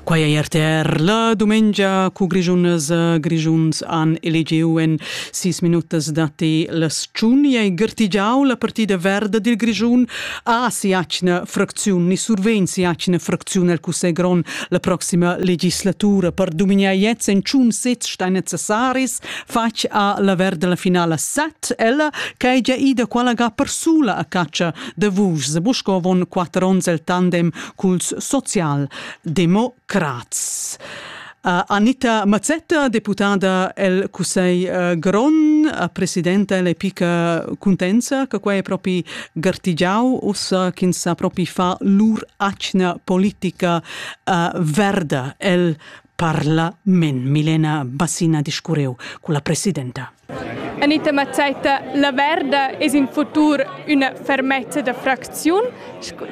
Quai è RTR la dumengia cu Grischunas e Grischuns han elegiu en sis minutas datti las tschun ei gartigiau la partida verda dil Grischun a siatgna fracziun ni survegn siatgna fracziun el Cussegl grond la proxima legislatura per dumignar jetzt en tschun sez stein necessaris fatg a la verda la finala set ella che ei gia ida quella ga persula a catscha de vus se buscovon quatter ons el tandem culs social democrats. Uh, Anita Mazzetta, deputada el Cussegl uh, Gron, uh, presidenta le pica contenza, che quai è propi gartigiau, ussa ch'ins sa propi fa lur acna politica uh, verda el parla men Milena Bassina discurreu con la presidenta. Anita Mazzaita, la Verda es in futur üna fermezza da fracziun.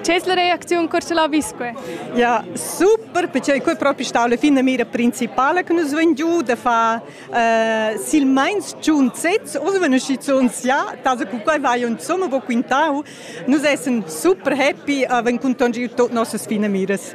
C'es la reaziun corso la visque? Ja, super, perché quei proprio sta alla fine mira principale che nus ven giù da fa uh, sil meins giun sez, os ven usci zu uns ja, also cu quei vai un somma bo quintau, nus essen super happy, uh, ven contongir tot nossas fine miras.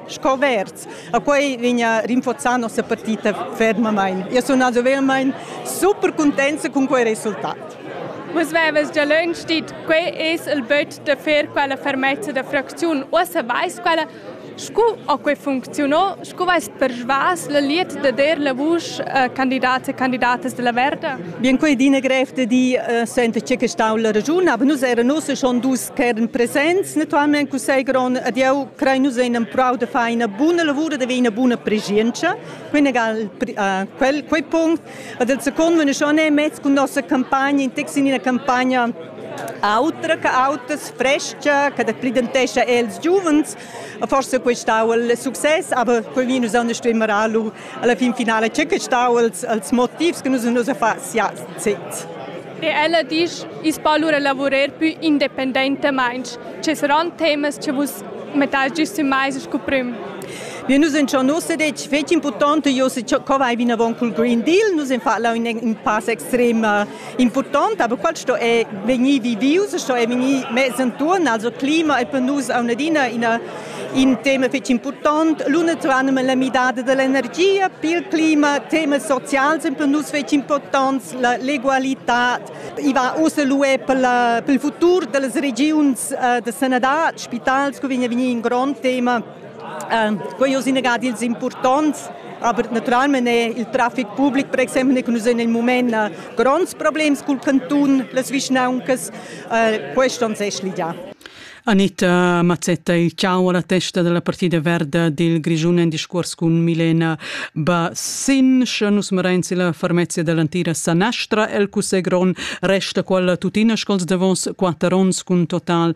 scoverts. A quei vegna rinforzà nossa partita fermamain. Io sun also vermain super contenta con quei resultat. Vus vevas già lunch dit, quei es il böt da fer quella fermezza da fracziun. Uossa vais quella Scu ha quei funzionò? Scu veist persvas la liet da der la vusch a candidats e candidatas della Verda? Bien, quei è dina grev da dir, uh, senta, c'è che stau la ragiun, aber nus eran ussa schon dus ch'eran presents. Naturalmein cussegl grond ad jeu crein nus ein empurau da far ina buna lavura, da haver ina buna preschientscha. Quinnegal quel, quei punct. Ed il second, wenn ich schon mezz con nossa campagna, in text in una campagna autra che autas, fresca, che pridentescha els giuvens. Forse questo è il successo, aber quei vi nus anders immer allu alla fin finale c'è che sta els, els motivs che nus nus fa sia sez. E ella dice, is palura lavorer più independentemente. Ci saranno temi che vos metaggisti mai scopriamo. Wir nous schon nos detg fetg important, jo se co vai vinavon col Green Deal, nous en fa la un, un pass extrem Impurtant, aber quel sto è vegnì vivius, sto è vegnì mess intorn, also clima e per nus a un'adina ina in tema fetg important, l'una tranum la midada dell'energia, il clima, tema socials è per nus fetg importants, la l'egualità, i va uss l'UE per, la, per il futur delle regions eh, de sanadad, spitals, che vegna vegnir in grond tema. Ehm, quei oz inagad ils impurtonts, aber naturalmein è il traffic public, per exempel, che nus en il moment eh, gronds problems col canton, las vischnauncas, eh, questo non s'è ligià. Anita Mazzetta, ciao alla testa della partita verda del Grigione in discorso con Milena Bassin. Sche nus merenzi la farmezia dell'antica Sanastra, el Cussegron resta quella tuttina scols davos quatter onns con total